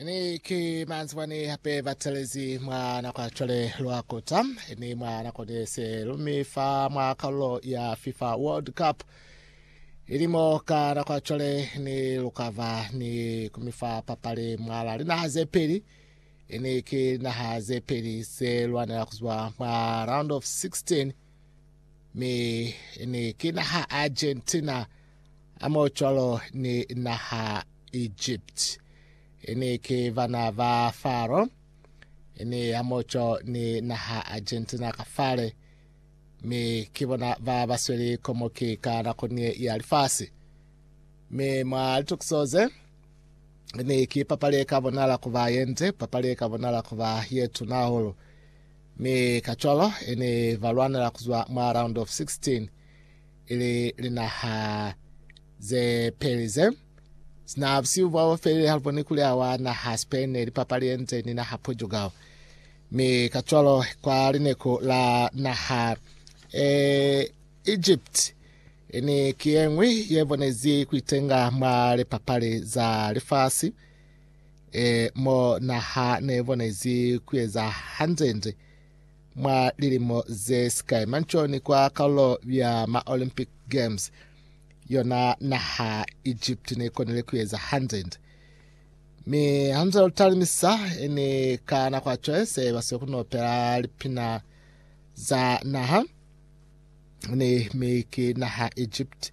ni ki manzibani hape ba tshelezi mwa nako ya cwale lwa kota ni mwa nako de se lumi fa mwa karolo ya fifa world cup ilimo ka nako ya cwale ni lukava ni kumifa papali mwala linaha ze peli ni ki linaha ze peli ze lwanela kuzwa mwa round of 16 mi ni ki naha argentina Hamoocwalo ni naha Egipti, ini ki bana ba Faro, ini hamoco ni naha Argentina ka fale, mi ki bona ba basweli komoki ka nako nie ya lifasi. Mi mwa litukiso ze, ini ki papali eka bonala kuba yende, papali eka bonala kuba yetuna hahulu. Mi kacwalo, ini balwanela kuzwa mwa round of 16. ili linaha ze peli ze sina busihu bwa bofelile haluboni kuli awa naha Spain ne lipapali yenze ni naha Portugal mi kacwalo kwa lineku la naha e Egypt ini ki yengwi ye bonezi kuitenga mwa lipapali za lifasi e mo naha ne bonezi kuyeza hanzenze Mwa lilimo ze si kai mancooni kwa kalulo ya ma Olympic Games, yona naha Egypt ne konile kueza hanzende. Mi hanze lu talimisa, ni ka nako ya cwale se ba siyo kunopela lipina za naha ni mi ki naha Egypt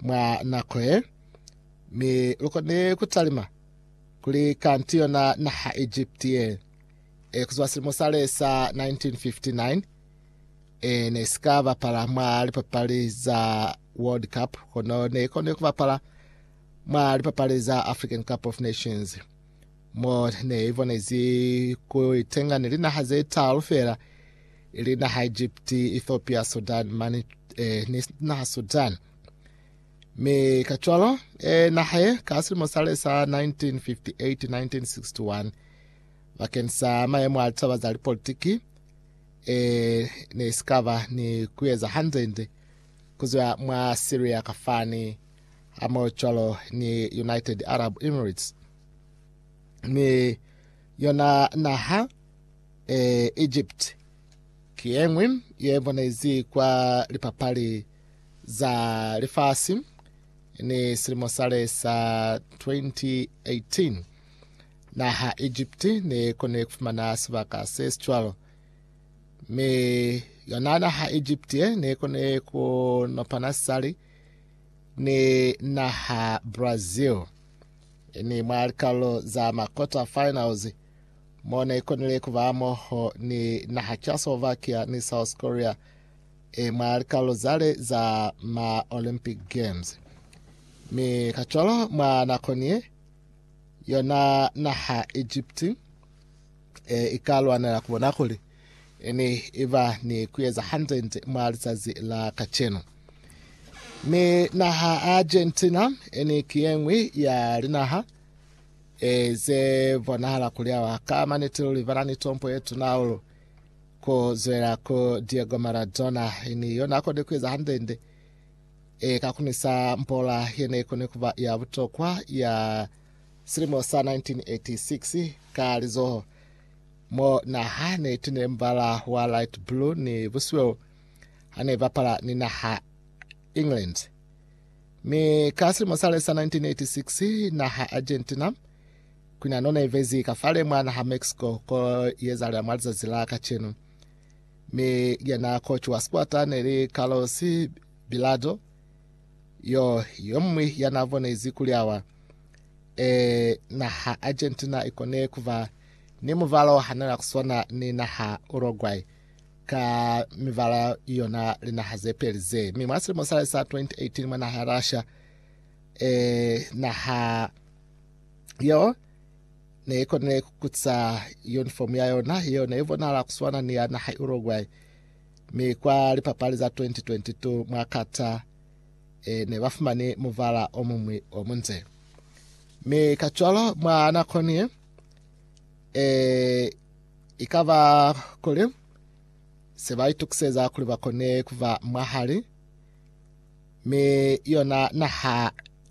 mwa nako ye. Mi lu konile kutalima kuli kanti yona naha Egypt ye. e, kuzwa silimo sale sa 1959, e ne si ka bapala mwa lipapali za World Cup, kono ne ikone kubapala mwa lipapali za African Cup of Nations, mo ne ibonezi ku itenga ni linaha ze talu fela, ili naha Egypt, Ethiopia, Sudan, mani e, ni naha Sudan. Mi ka cwalo, e, naha ye ka silimo sale sa 1958-1961 Bakeng sa mayemo a litaba za lipolitiki, e ne si ka ba ni kueza hande-nde kuzwa mwa Syria kafani hamohocwalo ni United Arab Emirates, mi yona naha, e Egypt, ki yeñwi ye bonezi kwa lipapali za lifasi ni silimo sale sa 2018. Naha Egipti ne kone kufumana sibaka se sicwalo, mi yona naha Egipti ye ne kone kunopana sisali ni naha Brazil, ni mwa likalolo za ma quarter finals, mo ne konile kuba moho ni naha Czechoslovakia ni South Korea e mwa likalolo zale za ma Olympic Games. Mi kacwalo mwa nako niye, Yona naha Egipti e ikalwanela kubona kuli ene iba ni kueza hanzenze mwa lizazi la kacenu. Mi naha Argentina ene ki yengwi ya linaha e ze bonahala kuli awa ka maniti luli bana ni tompo ye tuna hahulu ku zwela ku Diego Maradona ene yona kode kueza hanzenze E ka kunisa mpola ye ne koni ku ba ya butokwa ya silimo sa 1986 ka lizoho mo naha ne tine mubala wa light blue ni busweu ha ne bapala ni naha England. Mi ka silimo sale sa 1986 naha Argentina kwina none vezi ka fale mwa naha Mexico ko yezalela mwa lizazi la kacenu. Mi ilya na kocwa sikwatane ili Carlos Bilardo, yo yomuñwi ya na bonezi kuli awa e naha Argentina ikone kuba ni mubalo hanana kuswana ni naha Uruguay ka mibala yona linaha ze peli ze. Mi mwa silimo sale sa 2018 mwa naha ya Russia, e naha yo Ne i konile ku kuca uniform ya yona, yeo ne i bonahala ku swana ni ya naha Uruguay, mi kwa lipapali za 2022 mwa Qatar e ne ba fumani mubala o muñwi o munde. Mi kacwalo mwa nako ni ye, e i ka ba kuli se ba itukiseza kuli ba kone ku ba mwahali mi yona naha